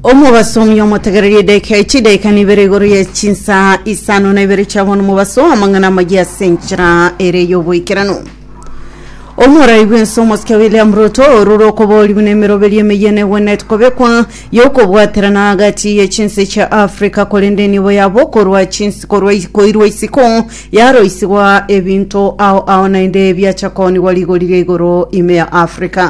omobaso omuya omotegereria edaika echi edaika na ibere igoro ya chinsa isano na ibere chiabono omobaso amang'ana amaya ase enchera ere y'oboikeranu omorai bwense omosike william ruto orure okobooriwa na emeroberi emeyia negwenerete kobekwa yokobwaterana agati ye chinse chia africa korende enibo yabo korwa chinse korwa koirwa isiko yaroisigwa ebinto ao ao naende biacha koonigwa rigori ria igoro ime ya africa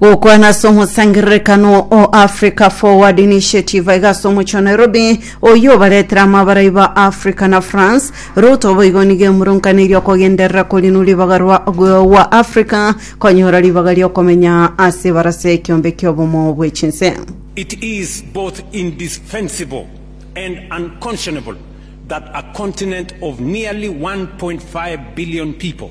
Gokwana ase omosangererekano o Africa Forward Initiative aiga ase omochie o Nairobi, oyio obaretire amabarai ba Africa na France. Ruto boigo nigo emurunkaneirie okogenderera korinu ribaga rwa gwa Africa konyora ribaga riokomenya ase ebarase y'ekiombe ki'obomo bwe chinse. It is both indefensible and unconscionable that a continent of nearly 1.5 billion people,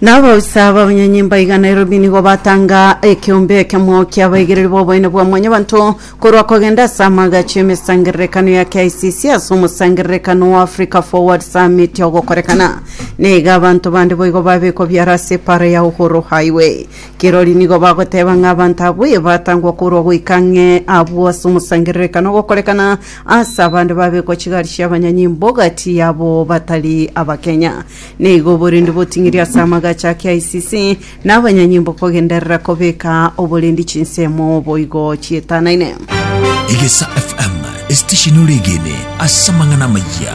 Naboisa b'abanyenyimba igana erobi nigo batanga ekeombe ekemo ki'abaigereri b'oboene bwa Mwanyabanto korwa kogenda ase amagacho y'emesangererekano ya KICC ase omosangererekano o Africa Forward Summit ogokorekana. Naiga abanto bande boigo babekwa biara ase epaara ya Uhuru Highway. Kirori nigo bagoteba ng'a abanto abwo ee batangwa korwa goika ang'e abwo ase omosangererekano ogokorekana ase abande babekwa chigari chi'abanyenyimba ogati yabo batari Abakenya. Nigo oborendi boting'iri ase amagacho a KICC na abanyanyimbo kogenderera kobeka oborendi chinsemo boigo chietanaine. Egesa FM, esitesheni oregene ase amang'ana amaya.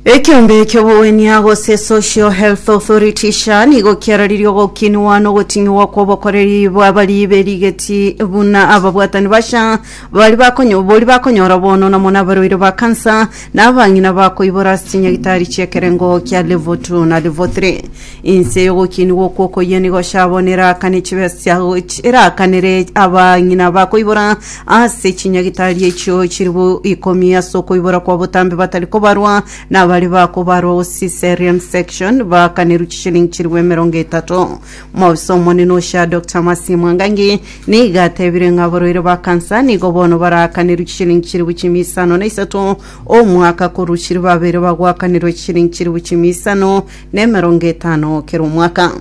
Ekiombe ki'obogonia gose Social Health Authority SHA nigo kiararirie ogokinwa na ogoting'iwa kw'obokoreri bw'abaribe rigeti buna ababwatani ba SHA Baria bakonyo- boria bakonyora bono namo nabarwaire ba kansa, na abang'ina bakoibora ase chinyagitari chi'ekerengo kia level 2 na level 3. Inse y'ogokinigwa okwo okoyia nigo sha bono eraakane chibe sia goch- eraakanere abang'ina bakoibora ase chinyagitari echio chiri bo ikomi ase okoibora kwa botambe batari kobarwa, na baria bakobarwa o Caesarean section baakanerwe chishilingi chiri bo emerongo etato. Omobisa omonene o SHA Dr Mercy Mwangangi nigo atebire ng'a abarwaire ba kansa nigo bono baraakanirwe chishilingi chilifu chimia isano na isato omwaka korwa chilifu babere bagoakanirwa chishilingi chilifu chimia isano na emerongo etano kera omwaka.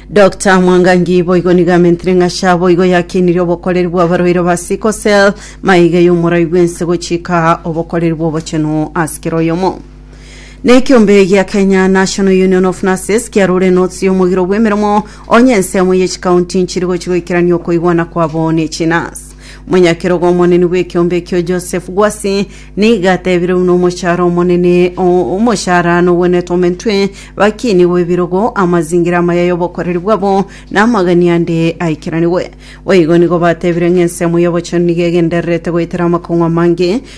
Dr Mwangangi boigo nigo amentire ng'a SHA boigo yakeinirie obokoreri bw'abarwaire ba sickle cell maiga y'omorai bw'ense gochika obokoreri bw'obochenu ase kera oyomo. na ekiombe gia Kenya National Union of Nurses kiarure enotsi y'omogiro bw'emeremo onye ensemo ye chikaunti nchiri gochi goikerania okoigwana kwabo ne chinas omonyakerogo omonene bw'ekiombe ekio Joseph Gwasi niga atebire buna omoshara omonene o- omoshara nogwenete omentwe bakini bw'ebirogo amazingira amaya y'obokoreri bwabo na amagani ande aikeranigwe boigo nigo batebire ng'a ensemo y'obochenu nigo egendererete goetera amakong'u amange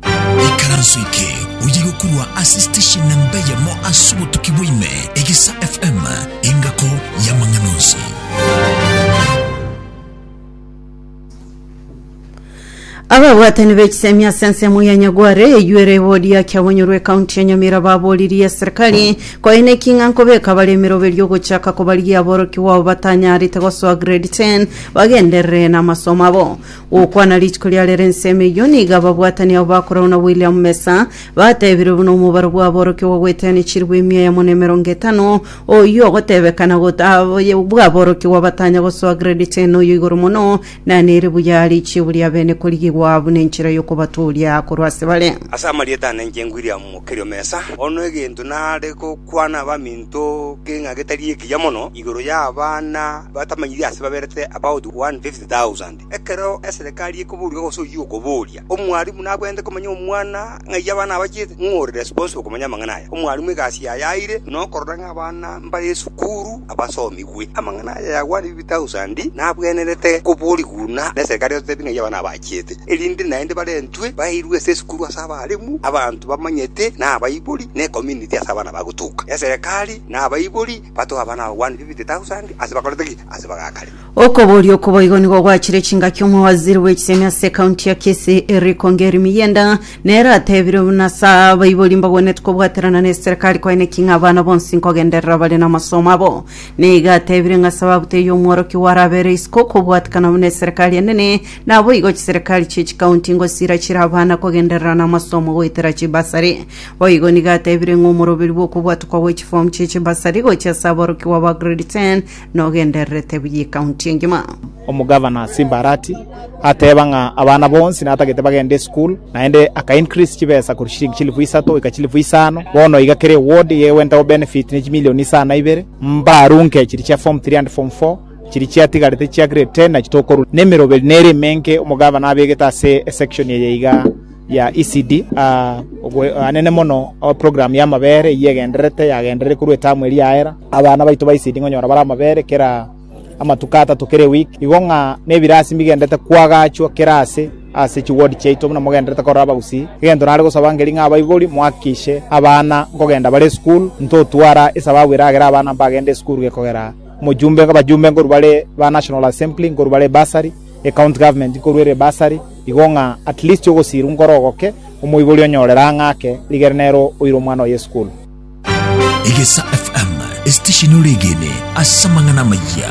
Ikaranso eke oye gokurwa ase station namba eyemo ase obotuki bwa ime, Egesa FM, engako y'amang'ana onsi. Ababwatani b'ekisemi ase ensemo ya Nyagware eywo ere boria kiabonyorwe ekaunti ya Nyamira baboririe serikali koe neking'a nkobeka abaremero beria ogochaka kobarigia aborokigwa abo batanyarete gosoa grade 10 bagenderere namasomo abo Gokwana rituko riarere ensemo eyio nigo ababwatani abo bakoragwo na William Mesa batebirwe buna omobaro bw'aborokigwa gweteanechirwe emia yamo na emerongo etano, oyio ogotebekana got- ab- ye- bw'aborokigwa batanya gosoa grade 10 oyo igoro mono, na nere buya are ichiabo ria bene korigigwa buna enchera y'okobatooria korwa ase bare. Ase amarieta ane inche William Mukerio Mesa, bono egento nare gokwana abaminto keng'a getari ekiya mono igoro y'abana batamanyiri ase baberete about 150 thousand. Ekero eserekari ekoboria gose oyio okoboria, omwarimu nabwenerete komanya omwana ng'ai abana abachete, ng'o ore responsible komanya amang'ana aya? Omwarimu egasi yaye aire nokorora ng'a abana mbare esukuru abasomigwe. Amang'ana aya ya one fifty thousand nabwenerete koboria buna neserekari egotebia ng'ai abana abachete, erinde naende barentwe bairwe ase esukuru ase abarimu, abanto bamanyete na abaibori na ecommunity ase abana bagotuka. Eserekari na abaibori batoe abana aba one fifty thousand ase bakorete ki? Ase bagakare. Okoboria oko boigo nigo gwachire chingaki omowaziri bw'echisemi ase ekaunti ya Kisii Eric Ongeri Miyenda nere atebire buna ase abaibori mbagwenerete kobwaterana na eserekari koeneki ng'a abana bonsi nkogenderera bare namasomo abo. Neiga atebire ng'a ase ababuti eyi omworokia oware abere isiko okobwatekana buna eserekari enene naboigo chiserekari chie chikaunti ngosira chire abana kogenderera namasomo goetera chibasari. Boigo nigo atebire ng'a omoroberi bw'okobwatokwa gwe chifomu chie chibasari gochia ase aborokigwa ba grade ten nogendererete buya ekaunti engima. Omogavana Simbarati ateeba ng'a abana bonsi natagete bagende esukuru, naende aka increase chibesa korwa chilingi chilifu isato goika chilifu isano. Bono iga kera eward iga egwenta gobenefit ne chimilioni isa na ibere. Mbarunke chiri chia form three and form four, chiri chiatigarete chia grade ten nachi tokorwa. Nemeroberi nere emenke omogavana abegete ase esection eye iga. ya ECD. Oboanene mono o program y'amabere eyio egendererete, yagenderire korwa etamu eria yaera. Abana baito ba ECD nkonyora bare amabere kera amatuko atato kera eweek, igo ng'a nebirasi mbigendererete koagachwa kera aase ase chiward chiaito buna mogendererete korora abagusii. Egento nare gosaba nkeri ng'a abaibori mohakikishe abana nkogenda bare esukuru, ntotwara esababu eragere abana mbagende esukuru gekogera omojumbe, abajumbe nkorwa bare ba National Assembly, nkorwa bare bursary. e county government korwa ere bursary igo ng'a at least ogosiirwa nkore ogoke omoibori onyore rang'a ake rigere nere oire omwana oye esukuru. Egesa FM, esitesheni oregene ase amang'ana amayia.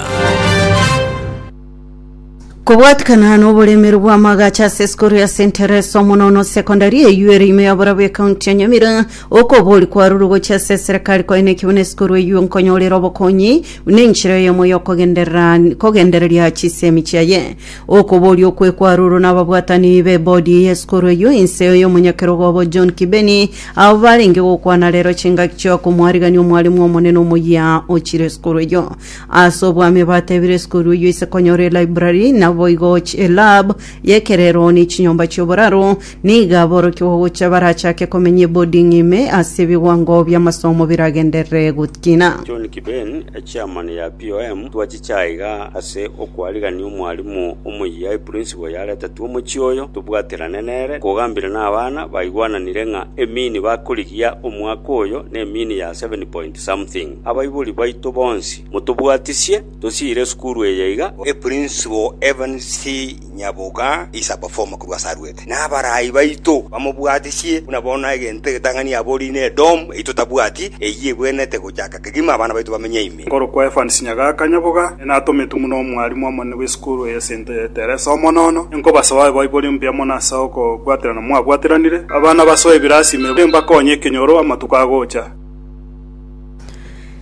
Kobwatikana n'oboremero bw'amagacha ase esukuru ya St Teresa Omonono Secondary eywo ere ime y'oborabwo ya ekaunti ya Nyamira Okobori kwarurwe gochia ase eserekari kwaye neki buna esiko rweiyo nkonyorera obokonyi, buna enchera eyemo y'okogenderera kogendereria chisemi chiaye. Okobori okwe kwarurwe nababwatani b'ebodi eye esiko rweiyo inse y'omonyakerogo obo John Kibeni, abwo barenge gokwana rero chingaki chia komwarigania omwalimu omonene omoyia ochire esiko rweiyo. Ase obwami batebire esiko rweiyo ise konyora elibrary, naboigo ch elab y'ekerero ne chinyomba chi'oboraro, Nigo aborokigwa gocha barachake komenya eboding ime ase ebigwango bi'amasomo biragenderere gokina. John Kiben, echairman ya POM, twachiche aiga ase okwarigania omwalimu omoyia eprinciple yaretetwe omochie oyo, tobwaterane nere, kogambire nabana baigwananire ng'a emini bakorigia omwaka oyo nemini ya seven point something. Abaibori baito bonsi motobwatisie, tosiire esukuru eye iga. Eprinciple Evans C. inyaboka is a performer korwa ase arwete, na abaraai baito bamobwatisie buna bono egento egetang'ani aborie na Edom eyio totabwati, eyio egwenerete gochaka kegima abana baito bamenye ime. Nkorokwa Evans Nyagaka Nyaboga, nere natometwe buna omwalimu omonene bw'esukuru eye ase ento ya Teresa Omonono. Ninkobasoe Baibori Mpya mono ase okobwaterana mwabwateranire. Abana basoe ebirasi ime, nimbakonye ekenyoro amatuko agocha.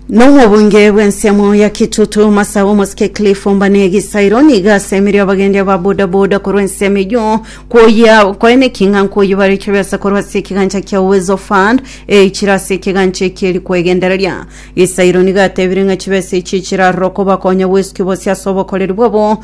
Nomobunge bw'ensemo ya Kitutu Masa Omosike Cliff Ombane Gisairo niga asemerie abagendi aba bodaboda korwa ensemo eyio koyia koene king'a nkoyibare chibiasa korwa ase ekigancha kia Uwezo Fund eichire ase ekigancha eki eri kwegendereria. Gisairo niga atebire ng'a chibesa echi chirarora okobakonya bwesuki bose ase obokoreri bwabo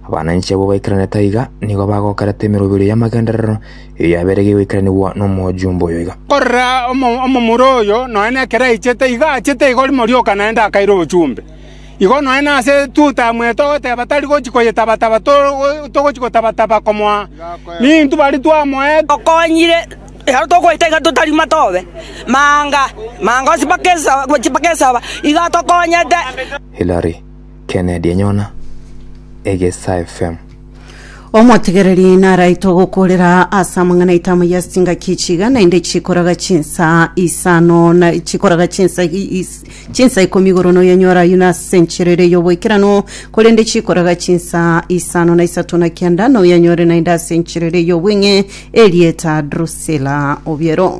Abananchi abwo baikaranete aiga nigo bagokarete emeroberio y'amagenderero, eyo yaberegeire goikaranigwa nomojumbe oyo iga. Korera, omomura oyo nonya ekero aichete, igo aachete igo rimo rioka naende akaira obochumbe. Igo nonya nase etuta amwete ogoteba, tari gochia koyetaba-taba, togochia gotaba-taba komoa nintu bari twamoete. Okonyire, ekero tokoita iga totarima tobe manga, manga onsi mpaka esaba, gochia mpaka esaba, igo atokonyete. Hilary. Kennedy Enyona, Egesa FM. Omotigereri naraitwe gokorera ase amang'ana aito amo ya chingaki echi iga, naende chikoraga chinsa isano na chikoraga chinsa i- is- chinsa ikomi igoro noyanyora ayio nase enchera ere y'oboikeranu, korende chikoraga chinsa isano na isato na kianda noyanyore naende ase enchera ere y'obweng'e, erieta Drusilla Obiero.